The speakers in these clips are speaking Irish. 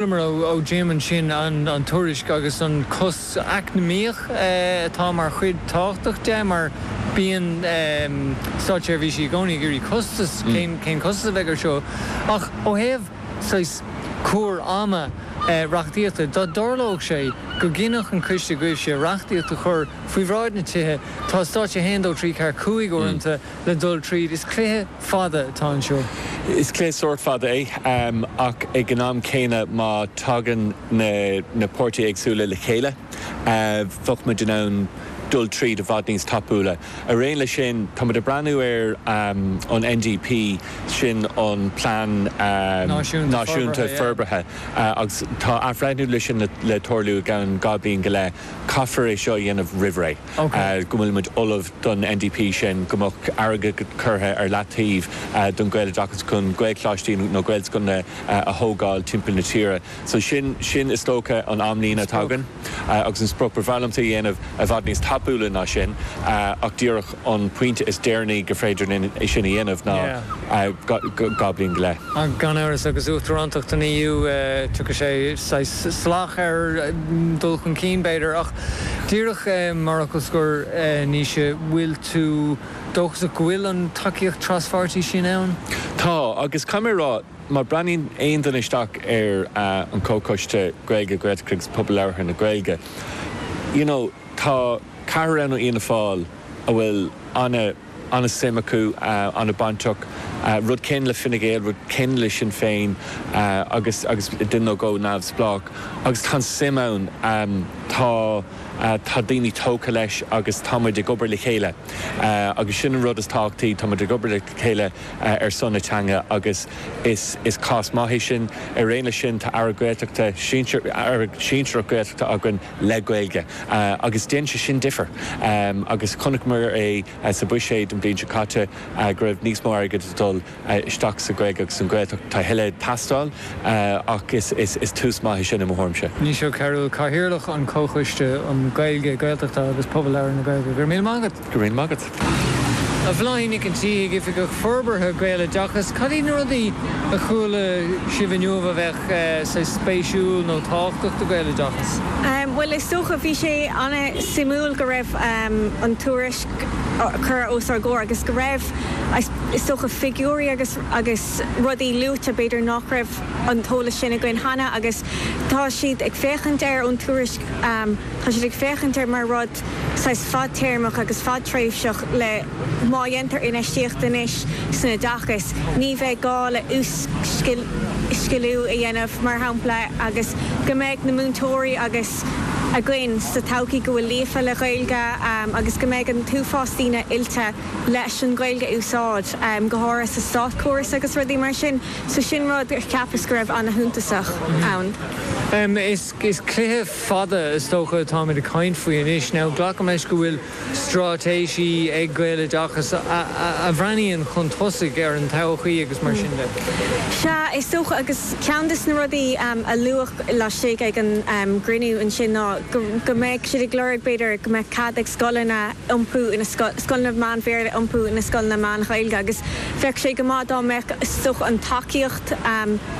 Nuair a dhéanann muid ansin an tuairisc agus an cás eacnamaíoch atá mar chuid tábhachtach de mar bíonn státseirbhísigh i gcónaí ag iarraidh costas, cén costas a bheidh air seo? ach ó thaobh saghas cur ama reachtaíochta dá dtarlódh sé go gcinnfeadh an coiste go mbeadh sé reachtaíocht a chur faoi bhráid na tithe, tá stáitse 1, 2, 3, 4, 5 uaireanta le dul tríd. Is cluiche fada atá anseo. Is cluiche sórt fada é ach ag an am céanna má tagann na páirtithe éagsúla le chéile bheadh muid in ann dul tríd i bhfad níos tapúla. Araon leis sin tá muid ag breathnú ar an NDP, sin an Plean Náisiúnta Forbartha agus tá athbhreithniú leis sin le tarlú i gceann dhá bhliain go leith. Caithfear é seo a dhéanamh roimhré. Go bhfuil muid ullamh don NDP, sin go mbeadh airgead curtha ar leataobh don Gaeloideachas chun Gaelcholáistí nó Gaelscoileanna a thógáil timpeall na tíre. So sin, sin is dócha an amlíne atá againn agus an sprioc. Ba bhreá liomsa a dhéanamh i bhfad níos tapúla ná sin ach díreach. an pointe is deireanaí gur féidir linn é sin a dhéanamh ná dhá bhliain go leith. Gan amhras, agus Uachtarántacht an EU, tiocfaidh sé saghas salach ar dhul chun cinn, b'fhéidir, ach díreach mar fhocal scoir, Naoise, bhfuil tú dóchasach go bhfuil an tacaíocht traspháirtí sin ann? Tá, agus caithfidh mé a rá, má bhreathnaíonn aon duine isteach ar an gComhchoiste Gaeilge, Gaeltachta agus Pobal Labhartha na Gaeilge, you know, tá, Ceathrar ann ó Fhianna Fáil a bhfuil an-suim acu, an-bainteach, rud céanna le Fine Gael, rud céanna le Sinn Féin agus duine nó dhó neamhspleách. Agus tá an suim ann, tá daoine tógtha leis agus tá muid ag obair le chéile agus sin an rud is tábhachtaí, tá muid ag obair le chéile ar son na teanga agus is cás maith é sin. Araon leis sin, tá Aire Gaeltachta, Aire sinsearach Gaeltachta againn. le Gaeilge agus déanann sé sin difear agus chonaiceamar é sa Bhuiséad an bhliain seo caite go raibh níos mó airgid ag dul isteach sa Ghaeilge agus an Ghaeltacht. Tá a thuilleadh ag teastáil ach is tús maith é sin i mo thuairimse. Naoise Ó Cearúil, Cathaoirleach an Chomhchoiste um Gaeilge, Gaeltachta agus Pobal Labhartha na Gaeilge. Go raibh míle maith agat. Go raibh míle maith agat. A Bhláithín Nic an Tí, Oifigeach Forbartha Gaeloideachas, cad iad na rudaí a chuala sibh inniu a bheadh saghas spéisiúil nó tábhachtach do Gaeloideachas? Bhuel is dócha bhí sé an-suimiúil go raibh an tuairisc curtha os ár gcomhair agus go raibh is dócha figiúirí agus agus rudaí luaite b'fhéidir nach raibh an t-eolas sin againn cheana agus tá siad ag féachaint air ón tuairisc tá siad ag féachaint air mar rud saghas fadtéarmach agus fadtréimhseach le má dhéantar infheistíocht anois san oideachas, ní bheidh gá le uas-sciliú a dhéanamh, mar shampla, agus go mbeidh na múinteoirí agus againn sa todhchaí go bhfuil líofa le Ghaeilge agus go mbeidh an t-uafás daoine oilte leis an Ghaeilge a úsáid, go háirithe sa státchóras agus rudaí mar sin. So sin rud a cheapas go raibh ana-shuntasach ann. Is cluiche fada is dócha atáimid ag caint faoi anois. Now glacaim leis go bhfuil straitéisí ag Gaeloideachas a bhreathnaíonn chun tosaigh ar an todhchaí agus mar sin de. Sea, is dócha, agus ceann des na rudaí a luadh laistigh ag an gcruinniú ansin ná go mbeadh siad ag lorg b'fhéidir go mbeadh cead ag scoileanna iompú i scoileanna meán-Bhéarla iompú ina scoileanna meán-Ghaeilge agus bheadh sé go maith dá mbeadh is dócha an tacaíocht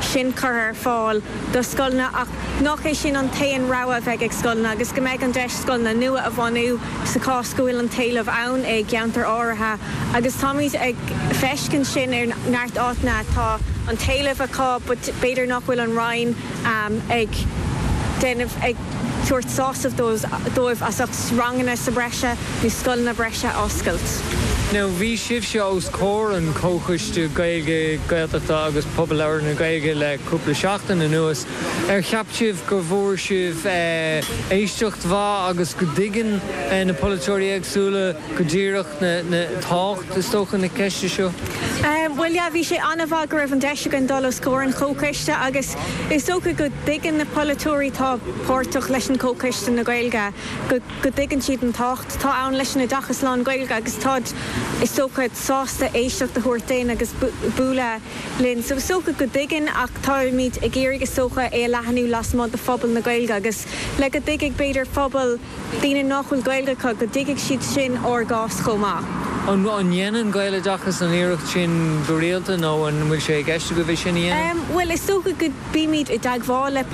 sin curtha ar fáil do scoileanna ach nach é sin an t-aon rogha a bheidh ag scoileanna agus go mbeidh an deis scoileanna nua a bhunú sa chás go bhfuil an t-éileamh ann i gceantair áirithe agus táimid ag feiscint sin ar neart áiteanna tá an t-éileamh acu but b'fhéidir nach bhfuil an Roinn ag déanamh tabhairt sásamh dóibh as ucht ranganna sa breise nó scoileanna breise oscailt. Now bhí sibhse os comhair an Chomhchoiste Gaeilge, Gaeltachta agus Phobal Labhartha na Gaeilge le cúpla seachtain anuas. Ar cheap sibh go bhfuair sibh éisteacht mhaith agus go dtuigeann na polaiteoirí éagsúla go díreach na tábhacht, is dócha, na ceiste seo? Bhuel, yeah, bhí sé an-mhaith go raibh an deis againn dul os comhair an Chomhchoiste agus. Is dócha go dtuigeann na polaiteoirí atá páirteach leis an gComhchoiste na Gaeilge, go dtuigeann siad an tábhacht atá ann leis an oideachas lán-Ghaeilge agus táid, is dócha, sásta éisteacht a thabhairt dúinn agus bualadh linn. So is dócha go dtuigeann ach táimid ag iarraidh, is dócha, é a leathanú lasmuigh de phobal na Gaeilge agus le go dtuigfidh, b'fhéidir, pobal. daoine nach bhfuil Gaeilge acu, go dtuigfidh siad sin ár gcás chomh maith. An ndéanann Gaeloideachas an iarracht sin go rialta nó an bhfuil sé i gceist agaibh é sin a dhéanamh? Bhuel, is dócha go mbímid i dteagmháil le.